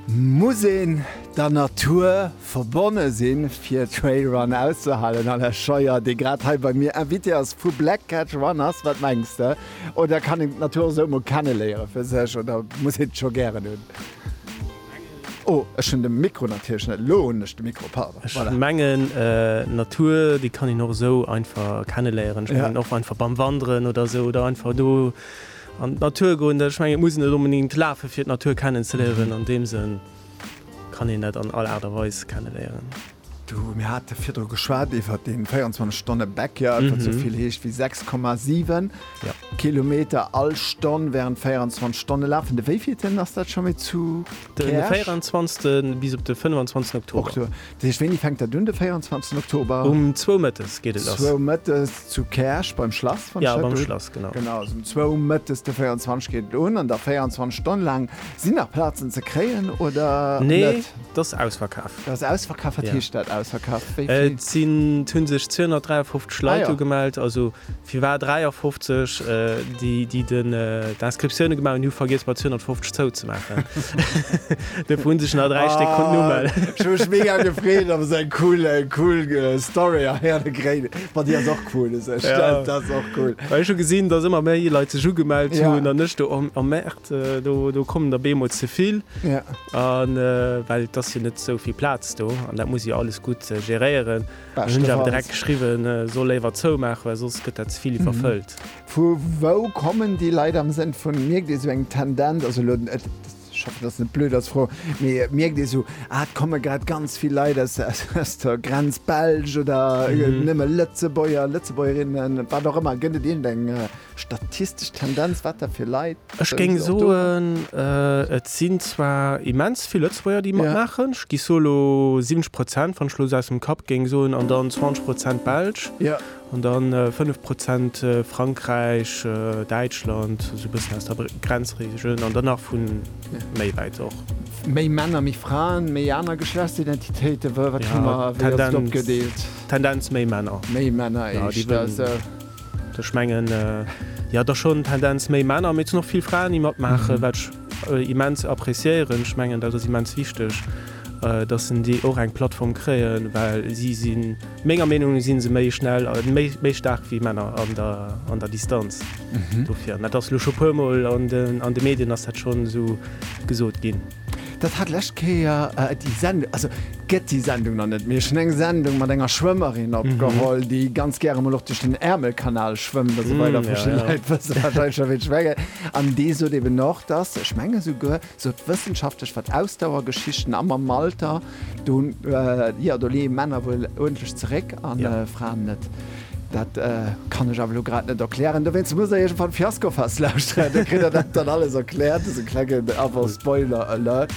Muss een der Natur verbonne sinn, fir e Trailrun auszehalen à la Scheuer, déi grad hei bei mir Invitée ass vu Black Cat Runners? Wat mengs de? Oder kann een d'Natur esou emol kenneléiere fir sech? Oder muss een et scho gären hunn? Oh, ech hunn de Mikro natierlech net. Elo hunn ech de Mikro, pardon. Ech mengen, d'Natur, déi kann een och esou einfach kenneléieren. Ech mengen och einfach beim Wanderen oder esou oder einfach do. An d'Natur goen, ech mengen, et muss een net onbedéngt lafen, fir d'Natur kennenzeléieren. An deem Sënn kann een dat an all Aart a Weis kenneléieren. Du, mir hate virdru geschwat iwwer dee 24 Stonne Backyard, wat sou vill heescht wéi 6,7 Kilometer all Stonn während 24 Stonne lafen. De wéivielten ass dat scho méi zu Käerch? De 24. bis op de 25. Oktober. Dat heescht, wéini fänkt dat un, de 24 Oktober? Um zwou mëttes geet et lass. Zwou mëttes zu Käerch beim Schlass, wann ech dat do. Genau, also um zwou mëttes de 24 geet et un an da 24 Stonne laang. Sinn nach Plazen ze kréien oder net? Nee, dat ass ausverkaf. Dat ass ausverkaf? Wat heescht dat ausverkaf? Wéi vill? Et hunn sech 253 Leit ugemellt. Fir war 53, déi d'Inscriptioune gemaach hunn, hu vergiess bei 250 zou ze maachen. Dofir hu sech nach 3 Stéck konnt umellen. Ech hu mech mega gefreet, ass eng cool Story. Ma déi ass och cool u sech. Well ech hu gesinn, datt ëmmer méi Leit sech ugemellt hunn an ech do, oh Merde, do kommen der beemol ze vill. Well et ass jo net esou vill Plaz do an dat muss ee jo alles gutt geréieren. Ech hunn awer direkt geschriwwen, soll léiwer zoumaachen, well soss gëtt dat ze vill iwwerfëllt. Vu wou kommen déi Leit am Sënn vun, mierkt ee sou eng Tendenz, also elo, ech hoffen dat ass net blöd als Fro, mee mierkt ee sou, ah et komme grad ganz vill Leit aus der Grenz Belsch oder nëmme Lëtzebuerger, Lëtzebuergerinnen, wat och ëmmer, gëtt et iergendeng Statistesch Tendenz, wat da fir Leit. Ech géing soen, et sinn zwar immens vill Lëtzebuerger, déi matmaachen. Ech gi so elo 70 Prozent, wann ech elo esou aus dem Kapp géing soen, an dann 20 Prozent Belsch an dann 5 Prozent Frankräich, Däitschland, esou e bëssen aus der Grenzregioun an dann nach vu méi wäit och. Méi Männer, méi Fraen, méi aner Geschlechtsidentitéiten? Wat hu mer, wéi ass dat opgedeelt? Tendenz méi Männer. Méi Männer, éischter. Ech mengen jo da schonn Tendenz méi Männer, mee et sinn och vill Fraen déi matmaachen, wat ech immens appreciéieren. Ech mengen dat ass immens wichteg, dass en déi och eng Plattform kréien, well si si menger Meenung no si se méi schnell a méi staark wéi Männer an der Distanz. Dofir, dat ass elo scho puermol an de Medien ass dat schonn esou gesot ginn. Dat hat lescht Kéier déi Sendung, also gëtt déi Sendung nach net, mee schon eng Sendung mat enger Schwëmmerin opgeholl, mhm. déi ganz gäre mol och duerch den Ärmelkanal schwëmmt, also weider mm, ja, Leit ja. wësse wahrscheinlich schon wéi schwénge. An déi sot eben och, dass, ech menge souguer, sot wëssenschaftlech, wat Ausdauergeschichten am am Alter, Do jo do leeë Männer wuel uerdentlech zeréck a Fraen net. Dat kann ech awer elo grad net erklären. Dowéinst musst der iergendwann d'Fiaskofest lauschteren, do kritt der dat dann alles erkläert. Dëse klenge Awer Spoiler Alert.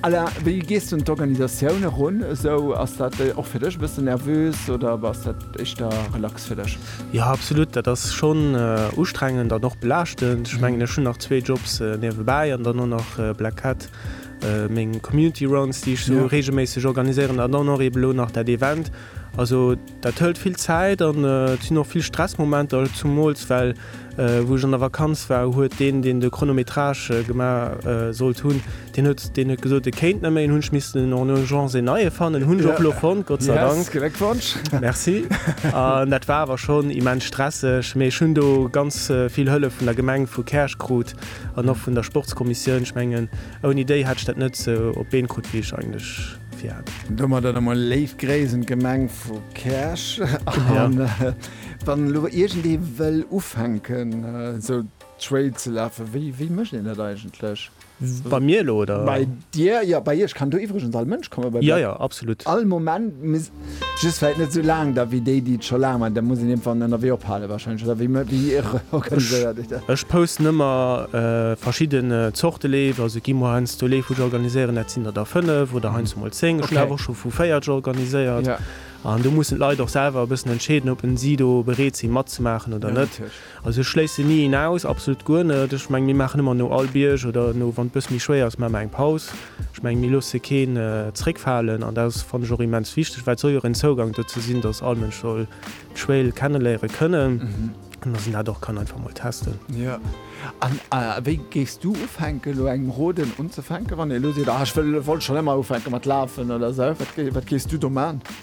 Alain, wéi gees du un d'Organisatioun erun esou? Ass dat och fir dech e bëssen nervös oder ass dat éischter relax fir dech? Jo absolut, dat ass schonn ustrengend an och belaaschtend. Ech mengen ech hunn nach zwee Jobs niewebäi an dann och nach Black Cat. Meng Community Runs, déi ech sou regelméisseg organiséieren an dann och eben elo nach dat Event. Also dat hëlt vill Zäit an et sinn och vill Stressmomenter, zumools well wou ech an der Vakanz war, huet deen, deen de Chronométrage gemaach sollt hunn, deen huet deen huet gesot, e kéint net méi, hunn ech missten en en urgence een neie fannen. Hunn ech och elo fonnt, Gott sei Dank. Yes, Gléckwonsch! Merci. An dat war awer schonn immens stresseg, mee ech hunn do ganz vill Hëllef vun der Gemeng vu Käerch krut. an och vun der Sportskommissioun. Ech mengen, ouni déi hätt ech dat net sou op d'Been krut, wéi ech eigentlech virhat. Domadder dann emol léif Gréiss un d'Gemeng vu Käerch. An wann elo iergendee wëll ufänken, sou Trail ze lafen, wéi, wéi mécht een dat eigentlech? Bei mir elo, oder? Bei dir, jo. Bei Iech kann do iwwregens all Mënsch kommen, bei mir. Jo, jo, absolut. All Moment, Just vläit net sou laang da wéi déi, déi et scho laang maachen. Da muss een iergendwann ënnerwee ophalen wahrscheinlech, oder wéi me-, wéi organiséiert Dir dat? Ech posten ëmmer verschidden Zorte Leef. Also et gi mol heiansdo Leef, wou ech organiséieren, dat sinn der da fënnef oder heiansdo mol zéng. Ech hunn awer och scho vu véierteg organiséiert. An do mussen d'Leit och selwer e bëssen entscheeden, ob en si do bereet sinn, matzemaachen oder net. Also ech schléissen ni een aus, absolut guer net. Ech mengen, mir maachen ëmmer no all Bierg oder no, wann et bësse méi schwéier ass, maache mer eng Paus. Ech mengen, mir loosse keen zréckfalen an dat ass, fannen ech, och immens wichteg, well et soll jo och een Zougang dozou sinn, dass all Mënsch soll d'Schouel kenneléiere kënnen an dass een dat och kann einfach mol testen. Jo. An wéi géifs du ufänken, elo engem roden unzefänken, wann ee elo seet, ah ech wëll, wollt schonn ëmmer ufänke mat lafen oder esou, wat géifs du do man?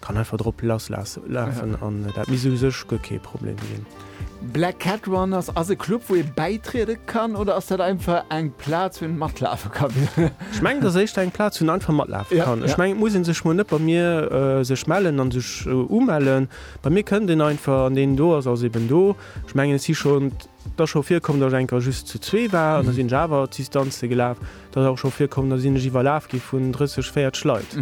Kann einfach drop lass lafen an dat misst u sech guer kee Problem sinn. Black Cat Runners ass e Club wou ee bäitriede kann oder ass dat einfach eng Plaz wou een matlafe kann? Ech mengen et ass éischter eng Plaz wou een einfach matlafe kann. Ech mengen et muss een sech mol net bei mir sech mellen an sech umellen. Bei mir kënnt een einfach an deen do ass ass eben do. Ech mengen et si schonn Et ass scho virkomm, datt ech eng Kéier just zu zwee war an da sinn ech awer d'Distanze gelaf. Et ass awer scho virkomm, da sinn ech iwwerlaf gi vun 30, 40 Leit.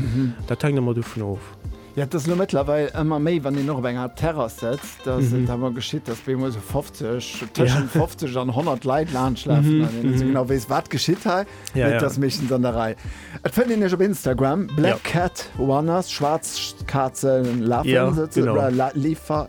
Dat hänkt ëmmer dovun of. Jo, et ass elo mëttlerweil ëmmer méi, wann een och op enger Terrass sëtzt, datt et da mol geschitt, datt op eemol esou 50, tëschent 50 an 100 Leit laanschlafen an een net esou genau weess, wat geschitt hei. Mee et ass meeschtens an der Rei. Et fënnt een iech op Instagram, Black Cat Runners, Schwaarz Kaze Lafen, sëtzen oder Leefer.